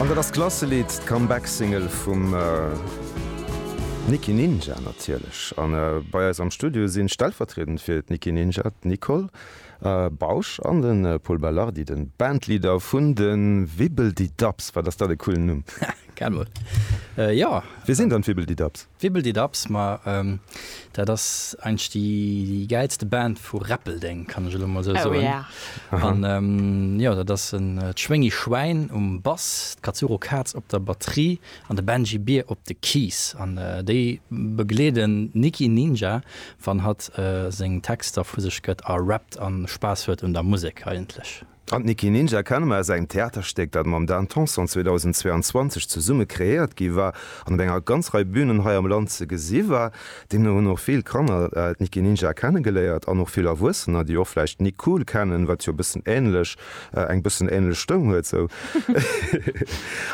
An dat ass d'Klasselidd, d'Comeback-Single vum Nicky Ninja natierlech. A bei eis am Studio si stellvertriedend fir d'Nicky Ninja d'Nicole Bausch an de Pol Belardi, de Bandleader vun de Wibbeldidabbs. Wat ass dat e coolen Numm! Kennt mer. Jo. Wie sinn dann d'Wibbeldidabbs? Wibbeldidaps, ma dat ass eigentlech déi gäilste Band vu Räppeldeng, kann ech elo emol esou soen. An jo, dat ass d'Schwéngi Schwäin um Bass, d'Katsuro Kaz op der Batterie an de Benji Bier op de Keys. An déi begleeden d'Niki Ninja, wann hatt seng Texter vu sech gëtt a rappt a Spaass huet un der Musek eigentlech. An d'Nicky Ninja kenne mer aus engem Theaterstéck, dat mam Dan Tanson 2022 zesumme kreéiert gi war an op enger ganz Rei Bünen hei am Land ze gesi war. Deemno hunn och vill Kanner d'Nicky Ninja kennegeléiert an och vill Erwuessener, déi och vläicht Nick Cool kennen, wat jo e bëssen änlech, eng bëssen änlech Stëmm huet sou.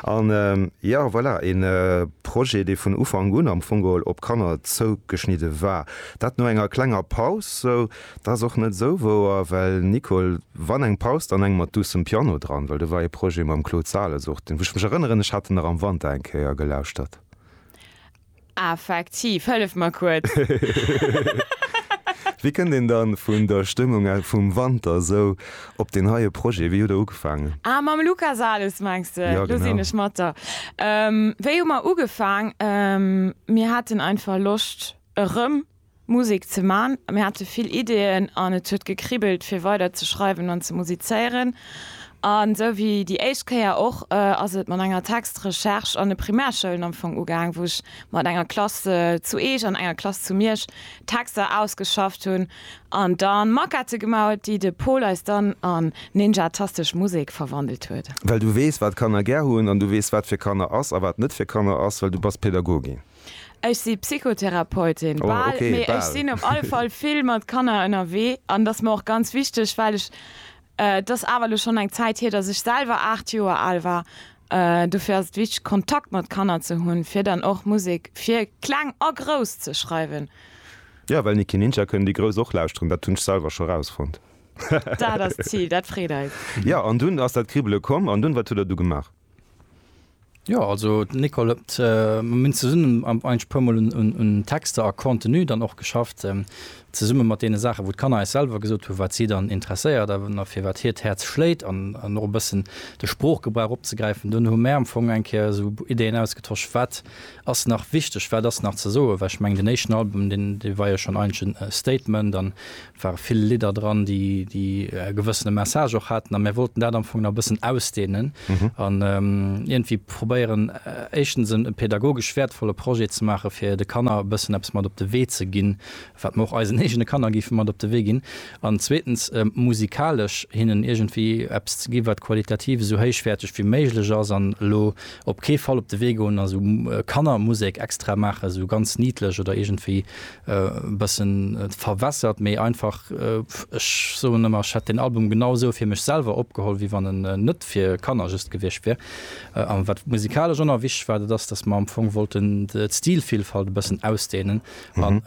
An jo, voilà, e Projet, dee vun Ufank un am Fong geholl op Kanner zougeschnidde war. Dat no enger klenger Paus sou. Dat ass och net sou wouer, well Nicole, wann eng Paus, dann eng mat duussem Piano dran, well do war ee Projet mam Claude Sales och, deen, wou ech mech erënneren, ech hat en nach am Wanter eng Kéier gelauschtert. Effektiv, hëllef mer kuerz. Wéi kënnt een dann vun der Stëmmung vum Wanter esou op deen heie Projet? Wéi huet Der ugefaangen? Ah, mam Luca Sales mengs de? Jo, genau. Do sinn ech mat der. Wéi hu mer ugefaang? Mir haten einfach Loscht erëm. Musek ze man. Mir hate vill Ideeën an et huet gekribbelt fir weider ze schreiwen an ze musizéieren. An esou wéi déi éischt Kéier och ass et mat enger Textrecherche an de Primärschoulen am Fong ugaang, wou ech mat enger Klass zu Eech an enger Klass zu Miersch Texter ausgeschafft hunn an da Maquette gemaach huet, déi de Paul eis dann an ninjatastesch Musek verwandelt huet. Well du weess wat Kanner gär hunn an du weess wat fir Kanner ass a wat net fir Kanner ass, well du bass Pädagogin. Ech si Psychotherapeutin. Oh, Bal, okay, mee ech bal. sinn op alle Fall vill mat Kanner ënnerwee an dat ass mer och ganz wichteg, well ech, et ass awer elo schonn eng Zäit hier, datt ech selwer aacht Joer al war. Dofir ass et wichteg, Kontakt mat Kanner ze hunn, fir dann och Musek fir Kleng a Grouss ze schreiwen. Jo, well Nicky Ninja kënnen déi Grouss och lauschteren, dat hunn ech selwer scho rausfonnt. Dat ass d'Zil, dat freet eis. Jo, an dunn ass dat Kribbele komm, an dunn, wat hutt Der du gemaach? Jo also d'Nicole huet, mir hunn zesummen eigentlech e puer mol un Texter a Contenu dann och geschafft, zesumme mat deene Saache wou d'Kanner eis selwer gesot hunn, wat si dann interesséiert a fir wat hiert Häerz schléit an och e bëssen de Sproochgebrauch opzegräifen. Dunn hu mär am Fong eng Kéier esou Ideen ausgetosch, wat ass nach wichteg, wat ass nach ze soen, well ech mengen deen éischten Album dee war jo schonn eigentlech e Statement an ware vill Lidder dran, déi déi e gewëssene Message och haten, a mär wollten dat am Fong nach e bëssen ausdehnen an iergendwéi probéieren, éischtens e pädagogesch wäertvolle Projet ze maachen, fir de Kanner e bëssen eppes mat op de Wee ze ginn, wat mer och eisen eegene Kanner géife mat op de Wee ginn, an zweetens musikalesch hinnen iergendwéi eppes ze ginn, wat qualitativ esou héichwäerteg wéi méiglech ass, an elo op kee Fall op de Wee goen a sou Kannermusek extra maachen, esou ganz niidlech oder iergendwéi E bëssen verwässert, méi einfach. Ech soen ëmmer, ech hätt deen Album genau esou fir mech selwer opgeholl, wéi wann en net fir Kanner just gewiescht wier. A wat musikalesch och nach wichteg war, dat ass, datt mer am Fong wollten d'Stilvillfalt e bëssen ausdehnen an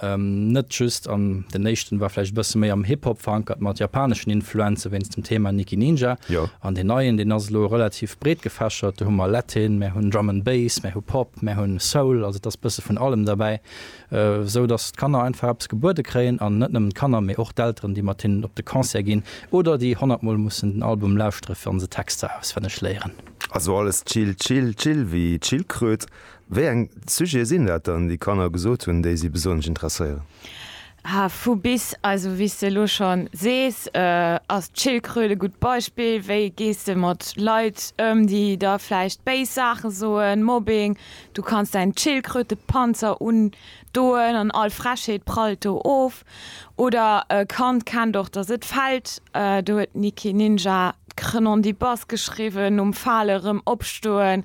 net just an, den éischten war vläicht e bësse méi am Hip-Hop verankert mat japaneschen Influenze wéinst dem Thema Nikki Ninja an deen neien, deen ass elo relativ breet gefächert. Do hu mer Latin, mer hunn Drum and Bass, mer hu Pop, mer hunn Soul, also et ass e bësse vun allem derbäi. esou datt d'Kanner einfach eppes gebuede kréien an net nëmmen d'Kanner, mee och d'Elteren, déi mat hinnen op de Concert ginn oder déi honnert Mol mussen den Album lauschtere fir an se Texter auswenneg léieren. Also alles chill, chill, chill wéi d'Schildkröt. Wéi eng Sujete sinn dat dann, déi Kanner gesot hunn, déi si besonnesch interesséieren? Ha, vu bis. Also wéi s de elo scho sees, ass d'Schildkröt e gutt Beispill. Wéi gees de mat Leit ëm, déi der vläicht béis Saache soen, Mobbing, Du kanns däin Tschildkrötepanzer undoen an all Frechheet prallt do of. Oder e Kand kennt och dass et fällt. Do huet Niki Ninja d'Krenondibas geschriwwen, nom Fale rëm opstoen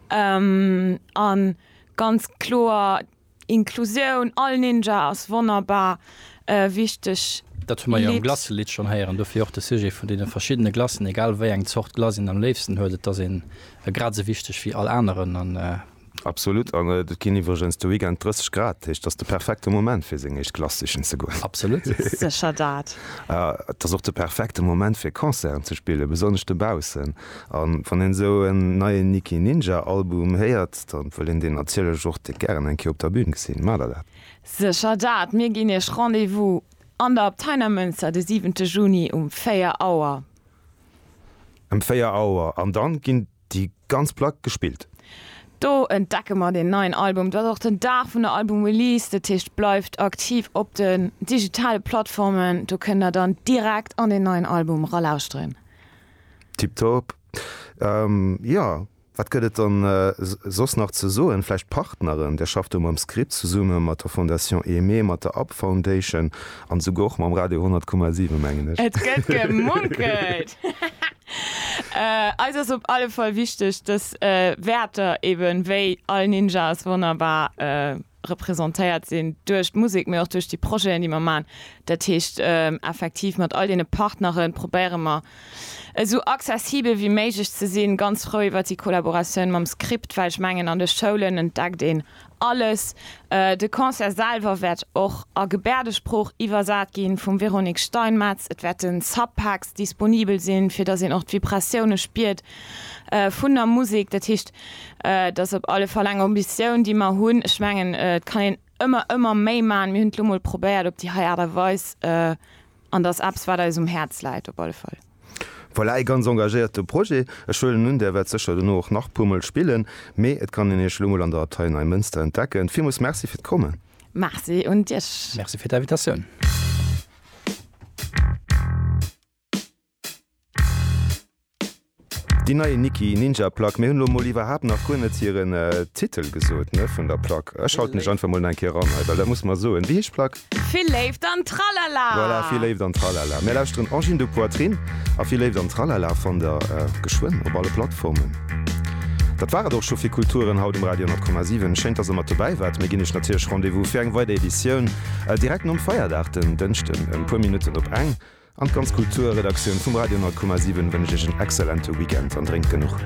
an ganz kloer Inklusioun, all Ninja ass wonnerbar wichteg. Dat hu mer jo am Glacelidd schonn héieren. Dofir och de Sujet vun deene verschiddene Glacen, egal wéi eng Zort Glace een am léifsten huet. Et ass een Grad esou wichteg wéi all aneren an. Absolut an et ginn iwwregens de Weekend 30 Grad, dat heescht ass de perfekte Moment fir seng éischt Klass sichen ze goen. Absolut. Sécher dat. Et ass och de perfekte Moment fir Concerten ze spillen, besonnesch dobaussen. An wann een esou en neien Nicky Ninja Album héiert, da wëll een deen natierlech och direkt gären eng Kéier op der Bühn gesinn. Maacht der dat? Sécher dat. Mir ginn iech Rendez-vous an der Abtei Neimënster de siwente Juni um 4 Auer. Em 4 Auer an dann ginn déi ganz Plack gespillt. Do entdecke mer den neien Album. Et ass och den Dag vun der Album Release, dat heescht bleift aktiv op den digitale Plattformen, do kënnt der dann direkt an den neien Album ralauschteren. Tiptop, jo. Wat gëtt et dann soss nach ze soen? Vläicht d'Partneren, Dir schafft do mam Script zesumme mat der Fondation Aimée, mat der Up Foundation an esouguer och mam Radio 100,7, mengen ech. Et gëtt gemunkelt! Eis ass op alle Fall wichteg, dës Wäerter, eben wéi all Ninja ass wonnerbar, representéiert sinn duerch d'Musek, mee och duerch déi Projeten, déi mer maachen. Dat heescht, effektiv mat all deene Partnere probéiere mer, esou accessibel wéi méiglech ze sinn. Ganz frou iwwert déi Collaboratioun mam Script, well ech mengen, an de Schoulen entdeckt een alles. De Concert selwer wäert och a Gebäerdesprooch iwwersat gi vum Véronique Steinmetz. Et wäerte Subpacks disponibel sinn, fir datt een och d'Vibratioune spiert, vun der Musek. Dat heescht, et ass op alle Fall eng Ambitioun, déi mer hunn. Ech mengen, et kann een ëmmer, ëmmer méi maachen. Mir hunn et elo mol probéiert op déi hei Aart a Weis an dat ass eppes, wat eis um Häerz läit op alle Fall. Voilà, ee ganz engagéierte Projet. Ech huelen un, Där wäert sécher dono och nach puermol spillen, mee et kann een Iech elo mol an der Abtei Neimënster entdecken. Villmools Merci fir d'Kommen! Merci un Iech! Merci fir d'Invitatioun! Déi nei Nikki Ninja Plack, mir hunn elo mol iwwerhaapt nach guer net hiren Titel gesot ne vun der Plack. Ech schalten mech einfach mol nach eng Kéier eran hei, well dat muss mer soen. Wéi heescht d'Plack? Vill Léift an Tralala! Voilà, Vill Léift an Tralala. Mir lauschteren Angine de Poitrine a Vill Léift an Tralala fannt der geschwënn op alle Plattformen. Dat war et och scho fir Kulturen haut um Radio 10,7. Schéin, dass der mat dobäi waart. Mir ginn iech natierlech Rendez-vous fir eng weider Editioun direkt nom Feierdag, den Dënschden, e puer Minutten op eng. An d'ganz Kulturredaktioun vum Radio 10,7 wënsch iech en exzellente Weekend an drénkt genuch.